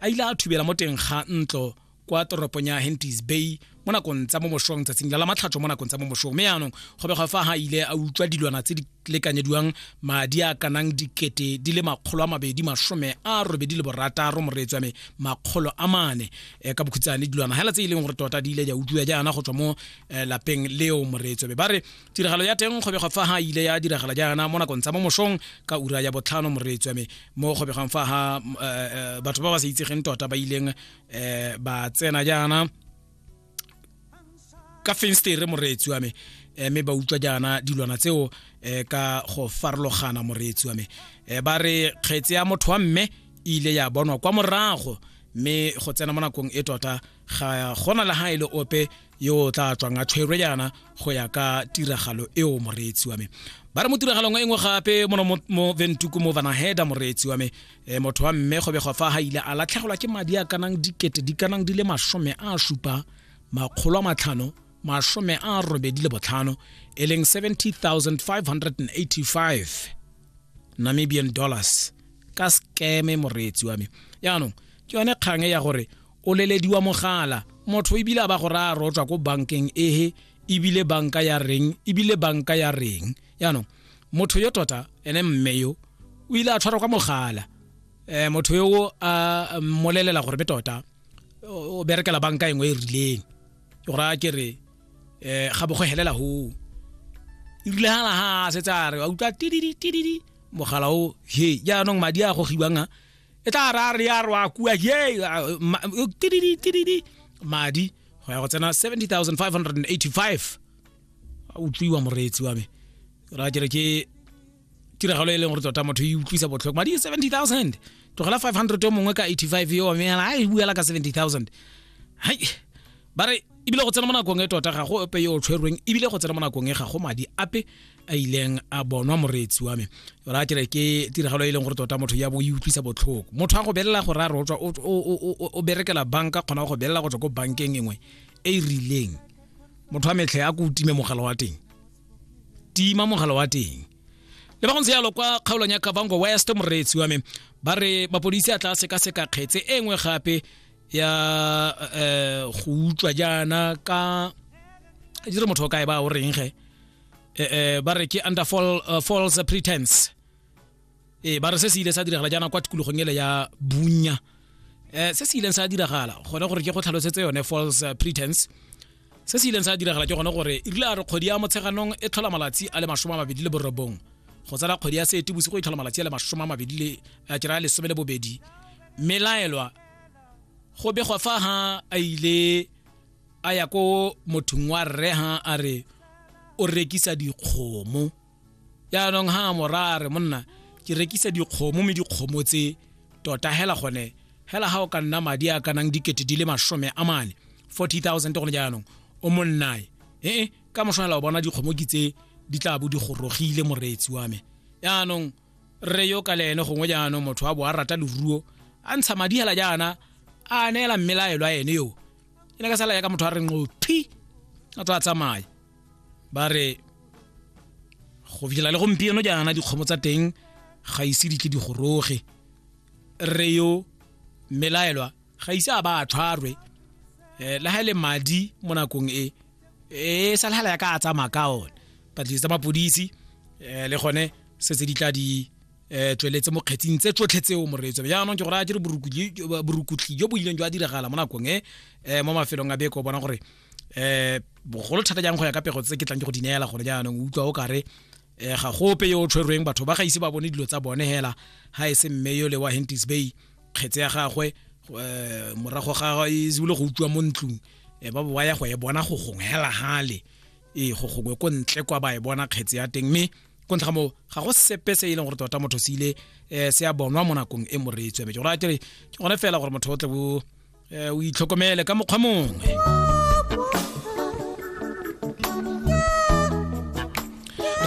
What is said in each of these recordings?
a ile a thubela mo teng ga ntlo kwa toropong ya hentis bay mo nakong tsa mo mosong tsatsing la matlhatso mo nakong tsa mo mosong mme yaanong go be fa ga ile a utlwa dilwana tse di lekanyediwang madi a kanang dikete di le makgolo a mabedi masome a robedi le borataro moreetswa me makgolo a mane eh, ka bokhutsane dilwana hela tse e leng gore tota di ile di a utlwiwa jaana go tswa mo eh, lapeng leo moreetswa me ba re tiragalo ya teng kgobega fa ha ile ya diragala jaana mo nakong tsa mo mosong ka ura ya botlhano moreetswa me mo kgobegang fa ha eh, eh, batho ba ba sa itsegeng tota ba ileng eh, ba tsena jaana ka fenstere moreetsi wa me eh, mme ba utlwa jaana dilwana tseo eh, ka go farologana moreetsi wa me eh, ba re kgetse ya motho wa mme e ile ya bonwa kwa morago mme go tsena mo nakong e tota ga gona le ga e le ope yo o tla tswang a tshwerwe jaana go ya ka tiragalo eo moreetsi wa me ba re mo tiragalong e nngwe gape mono mo ventuku mo vanaheda moreetsi wa me e motho wa mme go begwa fa ga ile a latlhegelwa ke madi a kanang dikete di kanang di le masome a supa makgolo a matlhano masome a robedi le botlhano e leng 70585 namibian dollars ka skeme moreetsi wa me yaanong ke yone kgang e ya gore o lelediwa mogala motho ebile a ba go raya rotswa ko bankeng ehe ebile banka ya reng ebile banka ya reng yaanong motho yo tota ene mme yo o ile a tshwarwa kwa mogala um motho yo a mmolelela gore be tota o berekela banka engwe e rileng ke go raya ke re um ga bo go helela ho e rile ga laga a setse a re a utlwa tididi tididi mogala o he jaanong madi a gogiwang a e tla ra re ya rwa kua ye uh, ma- uh, tididi tididi madi go ya go tsena 70585 a utlwiwa moreetsi wa me ra kere ke tiragalo e leng gore tota motho e utlwisa botlhoko madi ke 70000 tlogela 500 yo mongwe ka 85 yo wa me yana a e buela ka 70000 hai ba re ebile go tsena mo nakong e tota ga go ope yo o tshwerweng ebile go tsena mo nakong e ga go madi ape a ileng a bonwa moreetsi wa me ra ke re ke tiragalo e leng gore tota motho ya bo e utlwisa botlhoko motho a go belela gore a rotswa o berekela banka kgona go belela go tswa ko bankeng engwe e e rileng motho wa metlhe a ko o time mogala wa teng tima mogala wa teng le ba go ntse yalo kwa kgaolong ya kavango west moreetsi wa me ba re mapodisi a tla sekaseka kgetse e nngwe gape ya eh go utlwa jaana ka di re motho o kae ba o reng ge eh, eh, ba re ke under fall, uh, false pretense ee ba re se se ile sa diragala jaana kwa tikologong ele ya bunya eh se se ileng sa diragala gone gore ke go tlhalosetse yone false uh, pretense se se ileng sa diragala ke gone gore e rile a re kgwedi ya motsheganong e tlhola malatsi a le masome a mabedi le borobong go tsala kgwedi ya seetebosigo e tlhola malatsi a le masome a mabedi le a kera lesome le bobedi melaelwa go begwa fa ha a ile a ya ko mothong wa rre ha a re o rekisa dikgomo yaanong ha mora a re monna ke rekisa dikgomo mme dikgomo tse tota hela gone hela ha o ka nna madi a ka nang dikete di le masome a mane 40000 gone jaanong o monnae ee ka moshwanela o bona dikgomo ke tse di tla bo di gorogile moreetsi wa me yaanong rre yo ka le ene gongwe jaanong motho wa bo a rata leruo a ntsha madi hela jaana a neela mmelaelo a ene yo e ne ka sala yaka motho a reng o phi a tsa tsamaya ba re go fitlhela le gompieno jaana dikgomo tsa teng ga ise di tle di goroge rre yo mmelaelwa ga ise a ba a tshwarwe um le ga e le madi mo nakong e e sa lhala ya ka a tsamaya ka one patlisi tsa mapodisi um le gone se tse di tla di um tsweletse mo kgetsing tse tsotlhe tseo moreetso jaanong ke gore a dire borukutli jo bo ileng jo a diragala mo nakong e um mo mafelong a beko o bona gore um bogolo thata jang go ya ka pego tse ke tlang ke go di neela gone jaanong o utlwa o kare um ga gope yo o tshwerweng batho ba ga ise ba bone dilo tsa bone hela ga e se mme yo le wa hentis bay kgetse ya gagwe eh, morago ga e zibile go utlwa mo ntlong e ba boa ya go e bona go gongwe hela hale ee go gongwe ko ntle kwa ba e bona kgetse ya teng mme ko ntlha moo ga go sepe se e leng gore tota motho se ile um se ya bonwa mo nakong e moreetswe mme ke gore a tere ke gone fela gore motho o tle bo eh, o itlhokomele ka mokgwa mongwe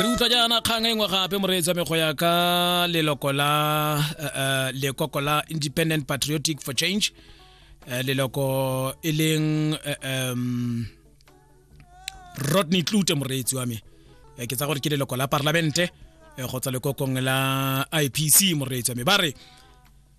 re utlwa jaana kgang e nngwe gape moreetsi wa me go ya ka leloko la eh, eh, lekoko la independent patriotic for change eh, leloko e leng eh, em, rodney tlute moreetsi wa me Eh, ke tsa gore ke leloko la parlamente eh, go tswa lekokong la ipc moreetsi wa me ba re